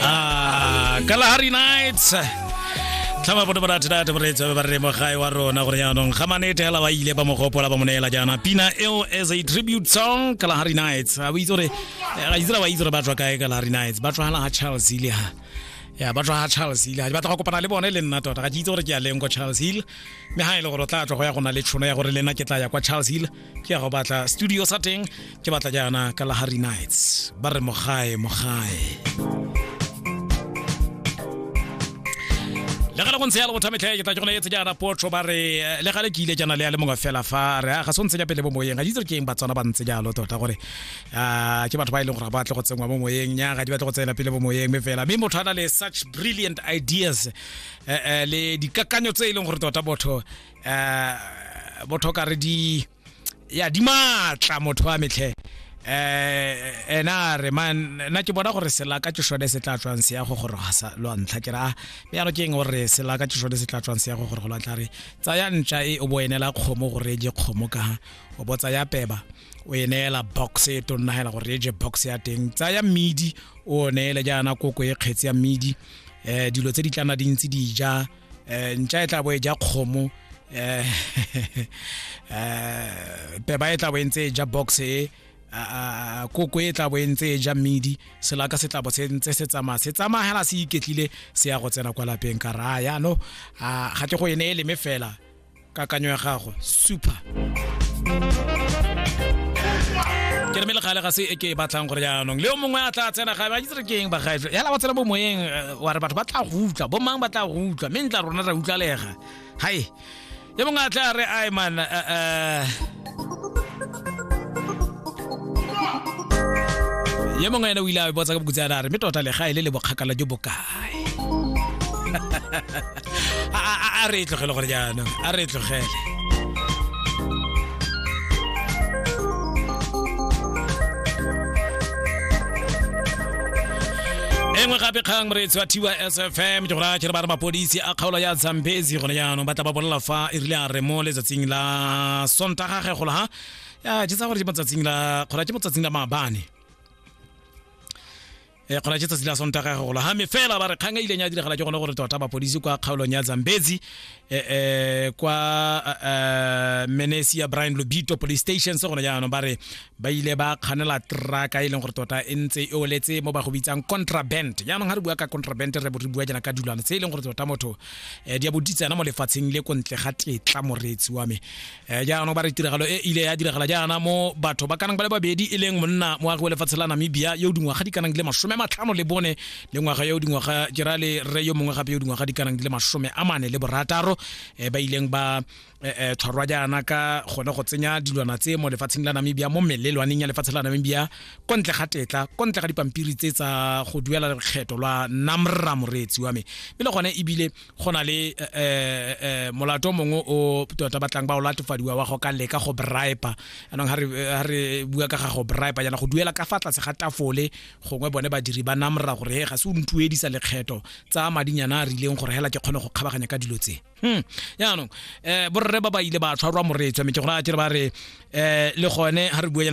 Ah, Kalahari Nights. tlhama bone barathirate boreetsa ba re mogae wa rona gore jaanong ga manete hela ba ile ba mogopola ba mo neela jaana pina eo as a tribute song kalahari nights a bo itse gore ga itse ba itse gore ba tswa kae kalahari nights ba tswagala ga charles ile ha ya ba tswa ga charles ile ga di batla go kopana le bone le nna tota ga ke itse gore ke ya leng kwa charles hill mme ga e le gore o tla tswa go ya go na le tšhono ya gore le nna ke tla ya kwa charles hill ke ya go batla studio sa teng ke batla jaana ka lahari nights ba re mogae mogae le gale go ntse ya le bothametlhe ke tla ke gone etse jaana potro ba re eh, le gale ke ile jana le ya le mongwe fela fa re a ga se ntse ja pele mo moyeng ga di itse ke eng batswana ba ntse jalo tota gore ah, ke batho ba e leng gore ba tle go tsenngwa mo moyeng nya ga di batle go tsena pele mo moyeng me fela mme motho a na le such brilliant ideas eh, eh, le dikakanyo tse e leng gore tota botho eh motho ka re di ya di matla motho wa metlhe eh ena re man na ke bona gore selaka ke shone se tla tswang se ya go gore sa lo ntlha ke ra me ya ke eng gore selaka ke shone se tla tswang se ya go gore go la tla re tsaya ntša e o bo enela kgomo gore je kgomo ka o bo tsaya peba o e neela box e to nna hela gore e je box ya teng tsaya mmidi o neele jaana koko e kgetse ya mmidi eh dilo tse di tlana dintsi di ja eh ntša e tla bo e ja kgomo eh peba eh, e tla bo e ntse e ja box e koko e tla bo e ntse e ja mmidi selaka se tla bo se ntse se tsamaya se tsamaya hela se iketlile se ya go tsena kwa lapeng ka raya no ga ke go e ne e leme fela kakanyo ya gagwe super ke re mele gale ga se e ke e batlang gore jaanong le yo mongwe a tla tsena gae ba itse re ke eng bagaefe yala wa tsena bo moyeng eh, wa re batho ba tla go utlwa bo mang ba tla go utlwa mme ntla rona ra utlwalega hai yo mongwe a tla re ai man eh, eh. yo mongwe ene o ile a botsa ka bokutsana a re mme tota legae le le bokgakala jo bokae a a- a- a re e tlogele gore jaanong a re e tlogele e nngwe gape kgang moreetsi wa tiwa sfm ke gora kere ba re mapodisi a kgaolo ya zampezi gone jaanong ba tla ba bolela fa e rile a re mo letsatsing la sontaga ge golo ha ya jetsa gore ke motsatsing la kgora ke motsatsing la maabane e kgona tse tsatsi la sontaga go gola game fela ba re kgang e ileng ya diragala ke gone gore tota mapodisi kwa kgaolong ya zambezi um kwa um menesi ya brian lobito police station se gone jaanong ba re ba ile ba kganela traka e leng gore tota e ntse e oletse mo ba go bitsang contraband jaanong ga re bua ka contraband re re bua jana ka dulwane tse e leng gore tota motho um di a boditsana mo lefatsheng le ko ntle ga tetla moreetsi wa me Eh, jaanong ba re tiragalo e ile ya diragala jaana mo batho ba kanang ba le babedi e leng monna moagi wa lefatshe la namibia yo dingwaga di kanang di le masome a matlhano le bone le ngwaga yo dingwaga ke ra le re yo mongwe gape yo dingwaga di kanang di le masome a mane le borataro um ba ileng ba um tshwarwa jaana ka gone go tsenya dilwana tse mo lefatsheng la namibia mo melelwaneng ya lefatshe la namibia ko ntle ga tetla ko ntle ga dipampiri tse tsa go duela lekgetho lwa namra moreetsi wa me mme le gone ebile go na le eh, eh, eh, molato mongwe o tota batlang ba o latofadiwa wa go ka leka go bripa anong ha re bua ka ga go bripa yana go duela ka fa tlase ga tafole gongwe bone badiri ba namra gore he ga se o ntuedisa lekgetho tsa madinyana a rileng gore hela ke kgone go kgabaganya ka dilo tse hmm. yaanong um borre ba ba ile ba tshwarwa moretswa mme ke gona a kere ba re um le gone ha re bua